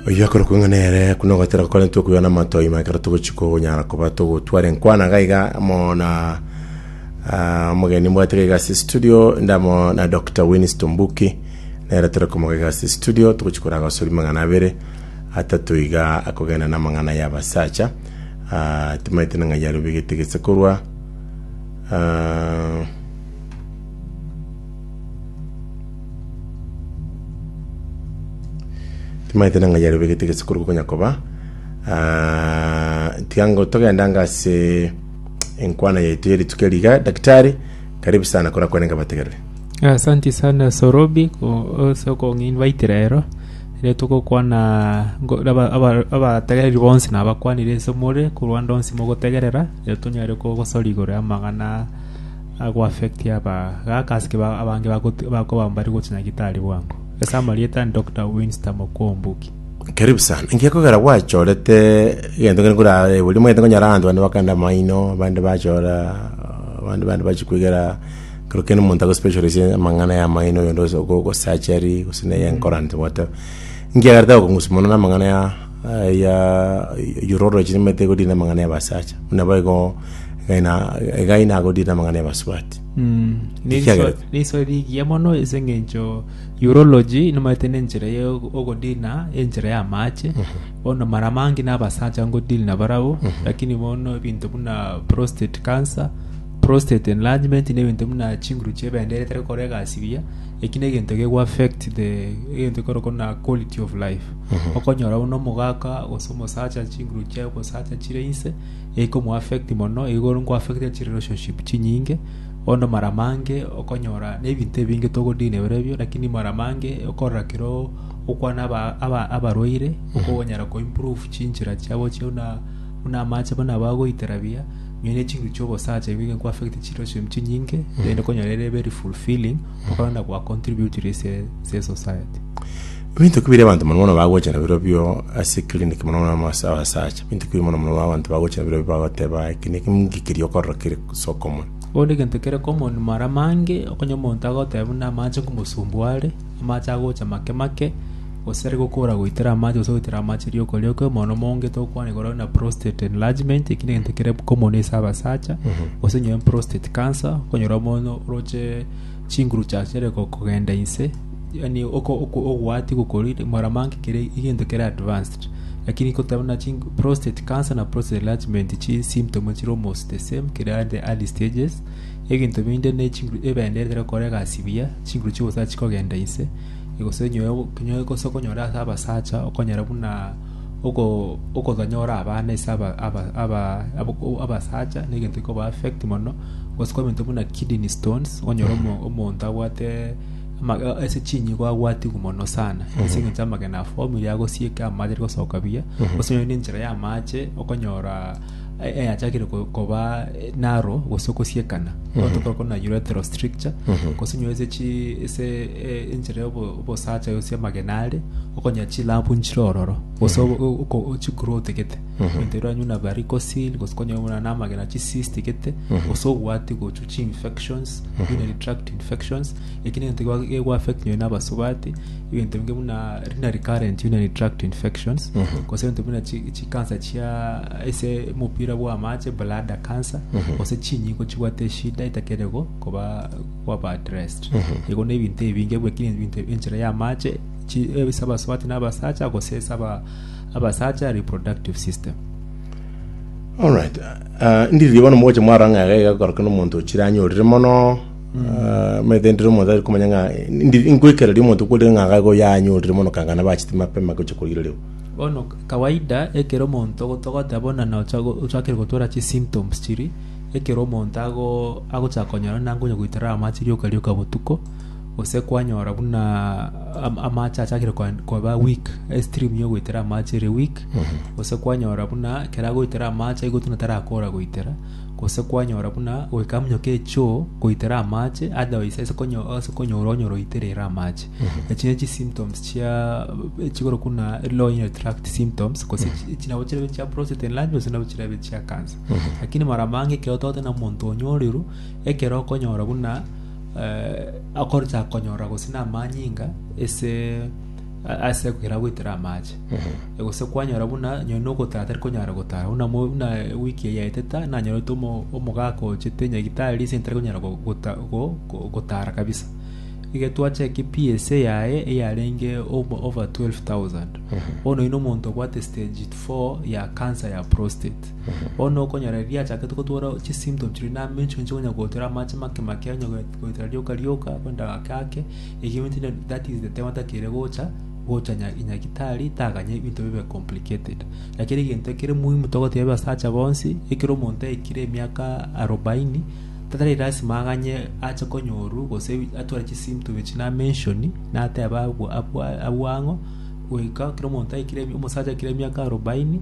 Oyio akorokwa ng'a nere kuna ogotera gokorentwe okwiga namatoi ma ekero togochi konyara koba togotwara enkwana iga iga amo na ah, omogeni mbwate iga iga ase studio ndamo na Dr. Winnis Tumbuki nere tore komoga iga ase studio togochi kora agosori mang'ana abere atato iga akogenda na amang'ana ya abasacha ah, timaete na ng'ai arobegete gese korwa ah, Timaete nang'ai yaria obegete gese korwa konya koba ah, tiango togendanga ase enkwana yaito ya rituko eri iga daktari karibu sana kora kwenenga bategerere Asanti sana Sorobi ase okoinvitera ero ere togokwana ngo- aba- aba- abategereri bonsi nabakwanire ase more korwa ande onsi mogotegerera ere tonyare kogosora igoro y'amang'ana agoaffectie abagaakaske abange bakoba mbari gochia nyagitari bwango. Ase amarieta ande Doctor Winster Mokuombuki. Karibu sana. Inki ekogera gwachorete egento kere kore aye bori omanyete konyora abanto bande bakande amaino, abande bachora, abande bande bachia kwegera kero kende omonto ago specialize amang'ana ya amaino oyonde gose ogo ogo surgery gose neye enkoro and whatever. Inki ekerete gokong'usa mono na amang'ana ya. Aya oyore oroche nimanyete egodire namang'ana y'abasacha, buna boigo egena egai nagodire namang'ana y'abasubati. Ekiagera- Neriso rigiya mono ase eng'encho urology nimanyete na enchera ya ogodiri na enchera y'amache bono mara mange na abasacha ngodiri na barabwo lakini bono ebinto buna prostate cancer prostate enlargement na ebinto buna chinguru chi'ebende etari gokora egasi buya eki na egento kego affect the egento ekorokwo buna quality of life. okonyora buna omogaka gose omosacha are chinguru chiaye ogosacha chire inse eikomoaffect mono igo ngoaffectire chi relationship chinyinge bono mara mange okonyora na ebinto ebinge togo deal nabiro ebio lakini mara mange okorora kero okwana aba- aba- abarwaire okonyara ko improve chinchera chiabo chie buna buna amache buna bagoitera buya nonya ne chinguru chia obosacha ebi bigo nkoaffect chi relationship chinyinge then okonyora ere very fulfilling okonyora gwa contributire ase ase society Ebinto ki biri abanto mono mono bagocha nabirobio ase clinic mono mono amo ase abasacha? Ebinto ki biri mono mono abanto bagocha nabirobio bagoteba eke neke ngikirie okorora kere ase okomoni? Bono egento kere common mare amange okonye omonto agoteba buna amache nkomosumbua are, amache agocha make make, gose are gokora goitera amache gose goitera amache riokoria okwe mono monge tokwana igoro na prostate enlargement eki negento kere common ase abasacha gose onye prostate cancer okonyora omonto oroche chinguru chia chiare go- kogenda inse. Yaani oko ogoatia gokorire mwaramange kere egento kere advanced lakini koteba buna chi prostate cancer na prostate enlargement chi symptom chire almost the same kere at the early stages ebinto binde ne chinguru ebende ekero okore egasi buya chinguru chigo sa chikogenda inse gose onye onye gose okonyora ase abasacha okonyora buna oko okotonyora abana ase aba aba aba abasacha na egento ekoba affect mono gose kwabenta buna kidney stones onyore omo omonto abwate Amagena ase chinyigwa agwatigwe mono sana ase eng'encho amagena afoamire agosieka amache aria gosoka buya gose nonye na enchera y'amache okonyora e- eyachakire ko- koba eh, narrow gose okosiekana otoka okona uretero stricture gose onye ase chi ase eh, enchera y'obo- obosacha gose amagena are okonya chilampu nchire ororo gose obo- o- oko- o- chiguru otegete egento erio oranywe na varikosil gose okonywa buna na amagena chisis tigete gose obwati gochu chi-infections, urinary tract infections. Eki negento gwa- gegwa-affect nonya na abasubati, egento inge buna renal recurrent urinary tract infections, gose egento buna chi- chicancer chia ase omopira bwa amache, bladder cancer, gose chinyingo chibwate eshida etakere go- koba kwaba addressed. Igo na ebinto ebinge bwe- ki- ebinto enchera ya amache, chi- eh, ase abasubati na abasacha, gose ase aba- abasacha reproductive system. Alright. Ndiririe bono mogocha mwarora ng'a iga iga gokorokana omonto o chire anyorire mono omanyete ndire omonto tari komanya ng'a ndi- nkoikereria omonto kore ng'a iga iga yanyorire mono kanga nabo achete mapema gocha koirerigwa Bono kawaida ekero omonto ogo togote abona na ocha go- ochakire gotwora chisymptoms chiria, ekero omonto ago- agochaka konyora nangwa onye goitera amache rioka rioka botuko, Gose kwanyora buna amache achakire koba weak, stream yogoitera amache ere weak, gose kwanyora buna keragoitera amache igo tuna tarakora goitera, gose kwanyora buna goika munyoka echoo goitera amache otherwise ase konyo ase konyora onye oroitere ere amache. Echi ne chisymptoms chia echikorokwa buna low urinary tract symptoms gose echi nabo chirebe chia prostate enlargement gose nabo chirebe chia cancer. Lakini mara mange ekero togoteba na omonto onya oriro, ekero okonyora buna. akochaka konyora gose namanyinga ase ase ekogera goetera amache gose kwanyora buna nonye na ogotara tari konyara gotara buna mo- buna wiki eye yaetete nanyorete omo- omogaka ochete nyagitari ase ntari konyara go- gota- go- go- gotara kabisa iga twachaka PSA yaye eyarenge obo- over 12,000 bono oino omonto obwate stage four ya cancer ya prostate Bono okonyora eri riachakete gotwora chisymptoms chiria na amencho inche konya gotwera amache make make onye goetera rioka rioka kogenda gake gake egio ebinto ebio that is the time atakeire gocha gocha nya nyagitari taganya ebinto bibe complicated lakini egento ekere muhimu togoteba abasacha bonsi ekero omonto aikire emiaka arobaini tatari lasima aganye ache konyorwa gose atware chisymptom echi na mention nateba abwa abwa abwa ang'o goika ekero omonto aikire omosacha aikire emiaka arobaini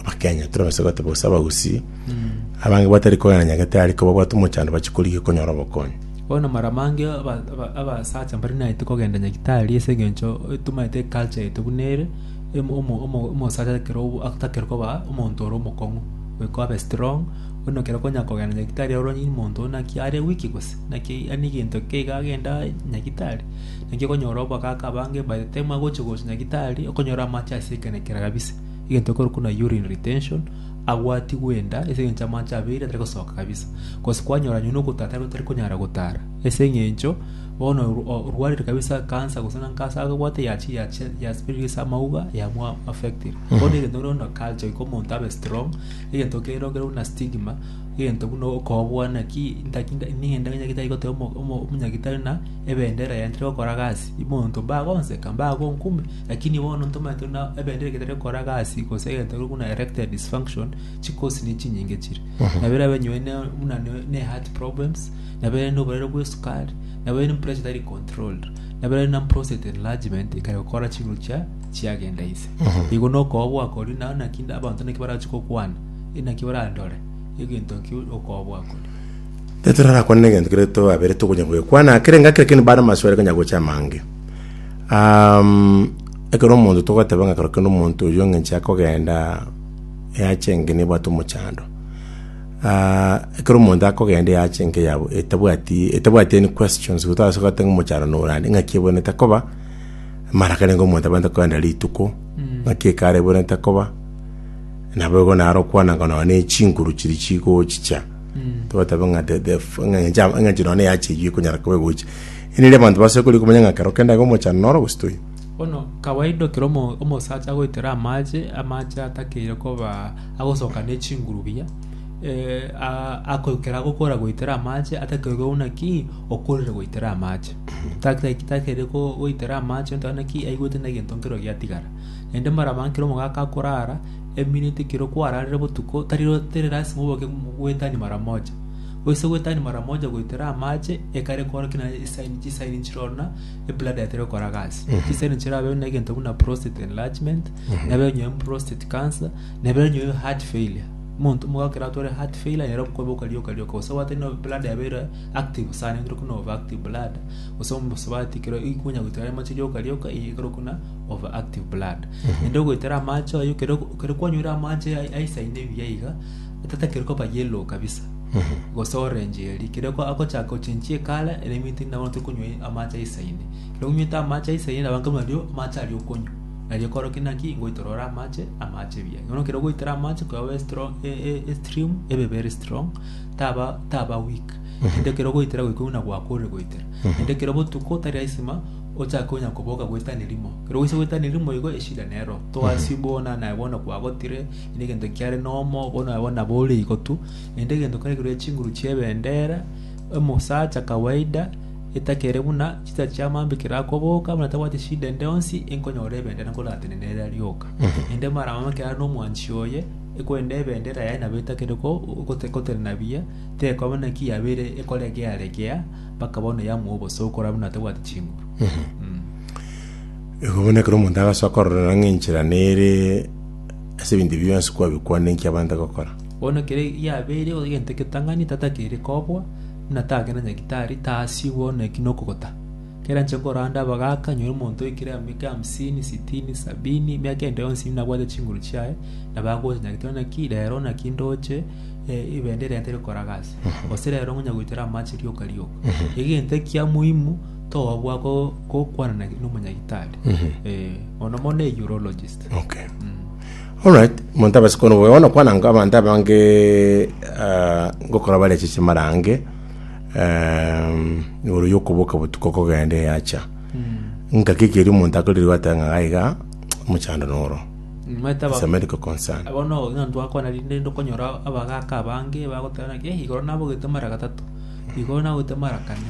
Abakenya torabase goteba gose abagusii abange batari kogenda Nyagetari ko babwate omochando bachie korigia konyora obokonyi. Bono mara mange aba- aba- abasacha mbari naete kogenda Nyagitari ase eng'encho tomaete eculture yaito buna ere, em- omo- omo- omosacha ekero obo- atakire koba omonto ore omokong'u, goika abe strong, bono ekero okonya kogenda Nyagitari aye ororanie omonto oyio naki are weak gose, naki ani egento ki iga agenda Nyagitari, naki okonyora abagaka abange by the time agochia gocha Nyagitari, okonyora amache ase ekero na ekero kabisa. egento ekorokwa na urine retention, agwo atigwe enda ase engencho amache abeire atari gosoka kabisa, gose kwanyora nonye na ogotara tari tari konyara gotara ase engencho bono orwarire kabisa cancer gose na cancer agobwate yachire yachi ya spread ase amauga yamo affectire. Bono egento korokwa buna culture goika omonto abe strong, egento kerokire buna stigma, egento buna okobwana ki ntaki nde ningende ng'ende tari goteba omo omo omonyagitari ng'a ebendera yaye ntari gokora gasi, omonto mbagonseka, mbagonkumia. Lakini bono ntomanyete buna ebendera egetari gokora gasi, gose egento keria buna erectile dysfunction, chikosi ne chinyinge chire. Nabo erabe nywe ne buna ne- ne heart problems, nabo ere noborwaire bwa esukari, nabo ere pressure etari controlled, nabo ere na prostate enlargement ekare gokora chinguru chia chiagenda ise. Igo nokoba gwakori naye naki abanto naki barachi gokwana, inaki barandore egento ki okoba gwakori. Tari torarakwane na egento keria twabere tokonya goekwana kere ngaki, lakini bare amaswali konya gocha amange. Um, ekero omonto togoteba ng'a ekero kende omonto oyio ng'enche akogenda eache enke nebwate omochando. Ah, ekero omonto akogenda eache enke yabo etabwati etabwati any questions gotase goteba ng'a omochando nore ande, ng'aki ebwenerete koba, mara akarenge omonto abwenerete kogenda rituko, ng'aki ekare ebwenerete koba, nabo igo naro okwananka nonya na echinguru chiria chigochicha, togoteba ng'a the- the f- ng'a engencho amo- eng'encho nonya na eache eyio ekonyara koba egocha. Eririo abanto base korwa komanya ng'a kero kende aiga omochando noro gose toi. Bono kawaida ekero omo- omosacha agoitera amache, amache atakeire koba agosoka ne chinguru buya, a- ako- ekero agokora goitera amache atakeire koba buna ki, okorire goitera amache. Take- takeire ko- goitera amache onto buna ki, aigwete na egento nkero giatigara. Naende mara abange ekero omogaka akorara, emineti ekero kwararire botuko, tari- tari lasima oboke goetania mara moja. Oise gwetania mara moja goitera amache ekare korokia na esaini chisaini chirona ebladder etari gokora gasi chisaini chirabe na egento buna prostate enlargement nebe nyoe prostate cancer nebe nyoe heart failure monto mogakera atore heart failure nero kobe okaria okaria okaria gose gwatari no bladder yabeire active sana egere kuna over active bladder gose omobaso batikire ikonya goitera amache rioka rioka eye ekero kuna over active bladder ende ogoitera amache ayo kere kwanyorire amache aisaine buya iga Otatakire koba yellow kabisa gose orange eria kere ko agochaka ochenchie ekara ere eminto nabo tokonywa amache aisaine kero onywete amache aisaine nabo nkabuna ario amache aria okonywa naria okore ki naki ngoitera ore amache amache buya bono ekero ogoitera amache koba obe strong e- e- estream ebe very strong taba taba weak kende ekero ogoitera goika buna goaka ore goitera kende ekero botuko tari aisima ochake onya koboka goetania rimo kero oise goetania rimo igo eshida nero to assume bono naye bono kwagotire. Inde egento kiare nomo obo nabo nabore igotu, naende egento kare kerwe chinguru chi'ebendera, omosacha kawaida, etakere buna chisacha chia mambi kerakoboka, buna tabwati shida ende onsi, enkonyora ebendera nkoratenene ere aria oka. Naende maramomo ekero are nomwanchi oye, ekorende ebendera yaye nabo etakere ko gote gotenena buya, tekoba buna ki yabeire ekoregea regea, mpaka bono yamoa obosa okora buna tabwati chinguru. Igo bono ekero omonto agasoa kororera ng'a enchera nere ase ebinto ebi bionsi kwabikwana inki abande gokora. Bono kere giabeire egento egetang'ani tatakeire kobua, buna take na nyagitari, tasi bono eki nokogota. Kera anche koranda abagaaka, nyore omonto oikire amiaka hamsini, sitini, sabini, emiaka ende yonsi buna abwate chinguru chiaye, nabo agocha nyagete onye naki rero naki ndoche eh, ebendera yaye teri gokora gasi, gose rero ngonya goitera amache rioka rioka. Egento ekia muhimu togobua go- gokwana na- nomonyagitari. Eh, mono mono a urologist. Okay. Alright, omonto abase koona obobe bono kwana nka abanto abange ah, ngokora bareche chimarange em, igoro yokoboka botuko kogenda eyacha nkaki ekeri omonto akorire gwateba ng'a gaiga mochando noro Maete aba- It's a medical concern bono ng'a twakwana rinde ndokonyora abagaka abange bagoteba naki eh igoro nabogete mara gatato igoro nabogete mara kane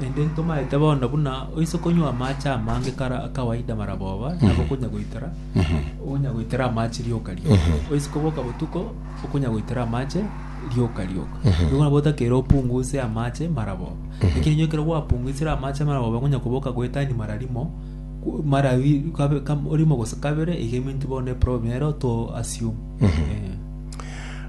Naende ntomaete bono buna oise konywa amache amange kare akawaida mara boba, nabo okonya goitera, okonya goitera amache rioka rioka. Oise koboka botuko, okonya goitera amache rioka rioka. Nigo nabo otakeire opunguse amache mara boba. Lakini onye ekero gwapunguisire amache mara boba, okonya koboka goetania mara rimo, ku- mara bi- kabe- kam- rimo gose kabere, iga eminto bono eproblem ero to assume. Eh.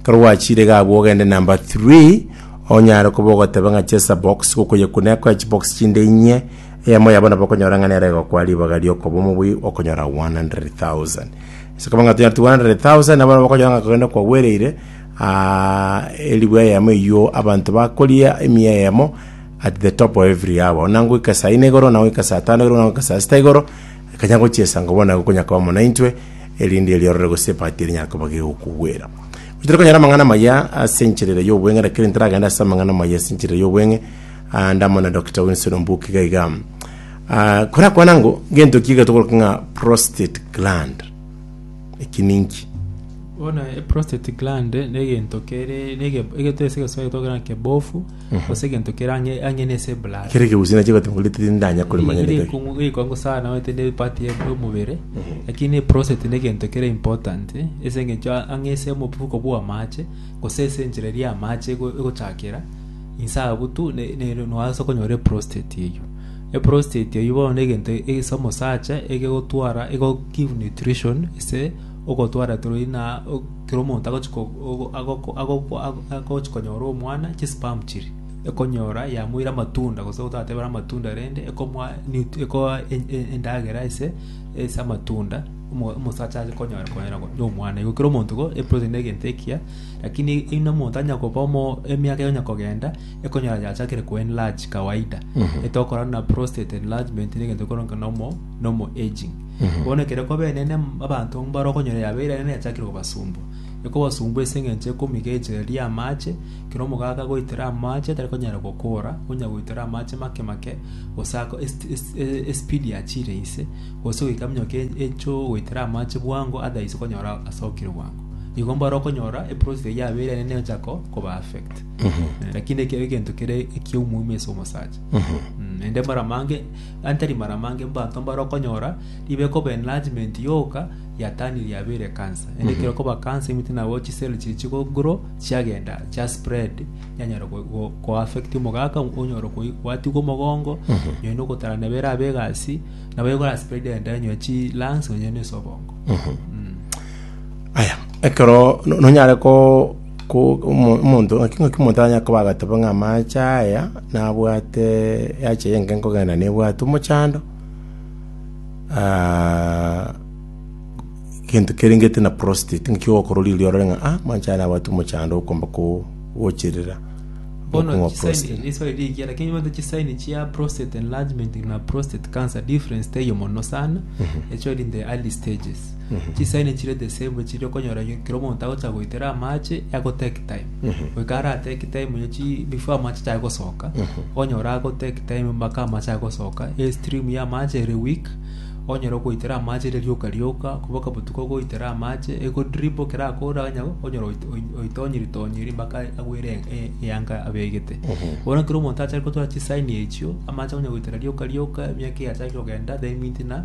Ekero gwachiire iga abwo ogende number three, onyare koba ogoteba ng'a chesa box gokoyekuna ekoe chibox chinde inye, eyemo yabo nabo okonyora ng'a nere egokwa ribaga riokoba omobui okonyora 100,000. Ase koba ng'a tonyareti 100,000 nabo nabo okonyora ng'a kogende kwagwereire aaah eribu eyemo eyuo abanto bakoria emiya eyemo at the top of every hour. Buna ngoika saa ine igoro, buna ngoika saa tano igoro, buna ngoika saa sita igoro. Ekanya gochia esaa ngobua naye gokonyakaba amo naintwe, erinde eriorore gose epaati erinyare koba gegokogwera. Gochire konyara amang'ana amaya ase enchera ere y'obweng'e, rakiri ntaragende ase amang'ana amaya ase enchera ere y'obweng'e, ah, ndamo na Doctor Winston Mbuki iga iga. Ah, korakwana ngo, gento ki getogoroka ng'a prostate gland? Eki ninki? Bono eprostate gland negento kere nege- egento ase egesoa getogokera ng'a kebofu gose egento kere ang'e ang'e na ase eblaada. Kere ekegusii nachiete goteema korende tindanya korimanya neke. Gekongu sana gete ne part ya omobere, lakini eprostate ne egento kere important, ase eng'encho a- ang'e ase omofuko bwa amache, gose ase enchera eria amache ego- egochakera, inse abwo tu ne- nere noasa konyora eprostate eywo. Eprostate eywo bono na egento ase omosacha, egegotwara ego give nutrition ase ogotwara through inaa o- Kera omonto agochia konyora omwana, chisipamu chiria ekonyora yamoira amatunda, gose gotateebera amatunda rende, ekomoa ekoa endagera ase ase amatunda, omosacha aye konyora konyora na omwana. Igo kera omonto igo eproteni na egento ekiya, rakini buna omonto anya koba omo emiaka enya kogenda, ekonyora yachakire ko enlarge kawaida. Etokorana na prostate enlargement na egento ekero nka nomo. normal aging. Bono ekero kobenene m- abanto mbarokonyora yabe ere nene yachakire kobasumbwa. Ekobasumbwa ase eng'encho ekomiga echereria amache, ekero omogaka agoitera amache tari konyara gokora, onya goitera amache make make, gose ako est- est- e- espeed yachire inse, gose goika minyoka e- echoo goitera amache bwango otherwise okonyora asokire bwango. Igo mbarokonyora eprosesi eyio yabe ere nene egocha ko- koba affect. Lakini ekero egento kere ekiya omoimo ase omosacha. Mm, naende mara mange. Gaki tari maramange mbaanto mbare okonyora ribe koba enlargement yoka ya tani riabeire cancer. Ende ekero koba cancer imite nabo chisel chiri chigo grow chiagenda chia spread yanyara go- go- go affect omogaka onyore koi- gwatigwa omogongo nyoe na ogotara nebe erabe egasi nabo egora spread enda nyoe chi lungs nonye na ase obongo. Mm. aya ekero no- nonyare ko Ko omonto ng'ake ng'ake omonto aranyare koba agateba ng'a amaache aya nabwate eaache eye enke nkogenda nebwate omochando, gento kerengete na prostate, ng'aki ogokora riria orore ng'a ah, amaache aya nabwate omochando okomba ko- gocherera Bono okong'wa chisaini, prostate. riswali rigiya, lakini nibanto chisaini chia prostate enlargement na prostate cancer difference teiyo mono sana, echweri in the early stages. Chisaini chiria chesegwe chiria okonyora ekero omonto agocha goitera amache ago take time goika ara take time ya chi before amache achake gosoka okonyora ago take time mpaka amache agosoka e stream ya amache ere weak okonyora ogoitera amache ere rioka rioka boka botuko ogoitera amache ego drip ekero akore onye okonyora oito oito oitonyiri tonyiri mpaka agwere e- eyanga abegete bono ekero omonto achare gotora chisaini echio amache akonya goitera rioka rioka emiaka egachaki kogenda then minti na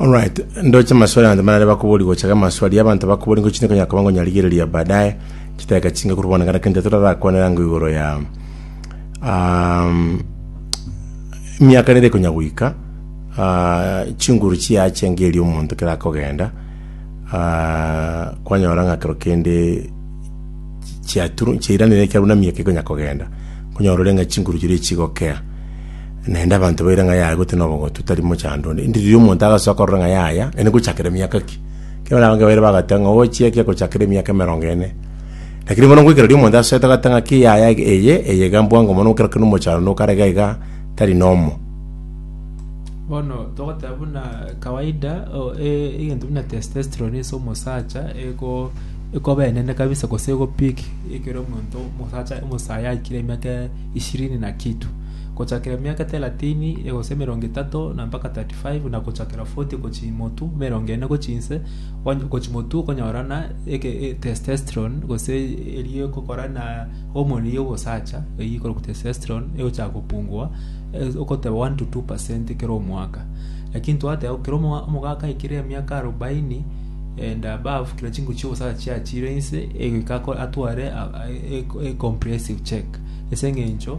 Alright, ndoche amaswali abanto barare bakobori gocha amaswali y'abanto bakobori ngochi nekonyara koba ngonyarigereria baadaye chidakika chinge korwa bono ngana kende torarakwanera ngo igoro ya um, miaka nere konya goika uh, chinguru chiache ngeri omonto kerakogenda uh, kwanyora ng'a kero kende chiaturu chiairanire ekiabu na miaka ikonya kogenda konyora ore ng'a chinguru chiria chigokea Naende abanto baire ng'a yaya gotyo nobogotu, tari mochando onde. Inde riria omonto agasoa korora ng'a yaya, ere gochakera emiaka ki? Ekero abange baire bagateba ng'a ochia ki agochakera emiaka emerongo ene. Lakini bono ngoika riria omonto asoete agateba ng'a ki yaya eye, eye iga mbwango mono gokera kera omochando na okare iga iga, tari nomo. Bono togoteba buna kawaida o- e- egento buna testosterone ase omosacha ego ekoba enene kabisa gose ego peak ekero omonto omosacha omosayi aikire emiaka ishirini na kitu. gochakera emiaka teratini egose emerongo etato na mpaka thirty five, na gochakera forty gochia imotu, emerongo ene gochia inse, on- gochia imotu okonyorana eke- e- testosterone gose eria egokora na hormone ya obosacha eyio ekorokwa testosterone egochaka gopungua eh, ogoteba one to two percent kera omwaka lakini twateba bo kera omoa- omogaka aikire emiaka arobaini and above kera chinguru chia obosacha chiachire inse egoika ako- atware a- a- e- e- comprehensive check ase eng'encho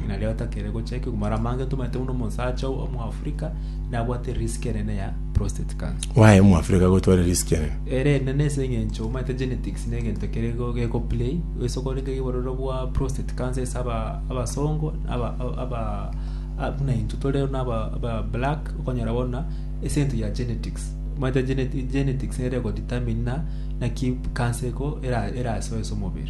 Ng'ina ria gatatu ere gocha ekegwa mara mange tomaete buna omosacha o- omoafrika nabwate risk enene ya prostate cancer Waye Omoafrika gotwara risk enene. ere enene ase eng'encho omanyete genetics na egento kere go- geko play ase okorenge iga obororo bwa prostate cancer ase aba- abasongo na aba- aba- aba- a- buna intwe tore buna aba- aba black okonyora bono ase egento ya genetics omanyete geneti- genetics nere ego determine na naki cancer eko era- erasoe ase omobere.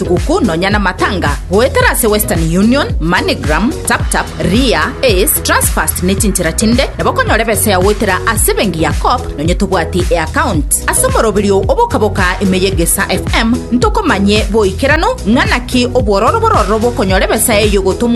Tuguku nonya na matanga goetera ase Western Union, MoneyGram, TapTap, Ria, Ace, Transfast ne chinchera chinde nabo konyora ebesa ya goetera ase ebenki ya Co-op nonya tobwati eaccount. Ase omoroberio o bokaboka ime ye Gesa FM ntokomanye boikeranu ng'a naki obwororo bororo bokonyora ebesa eyo gotomwa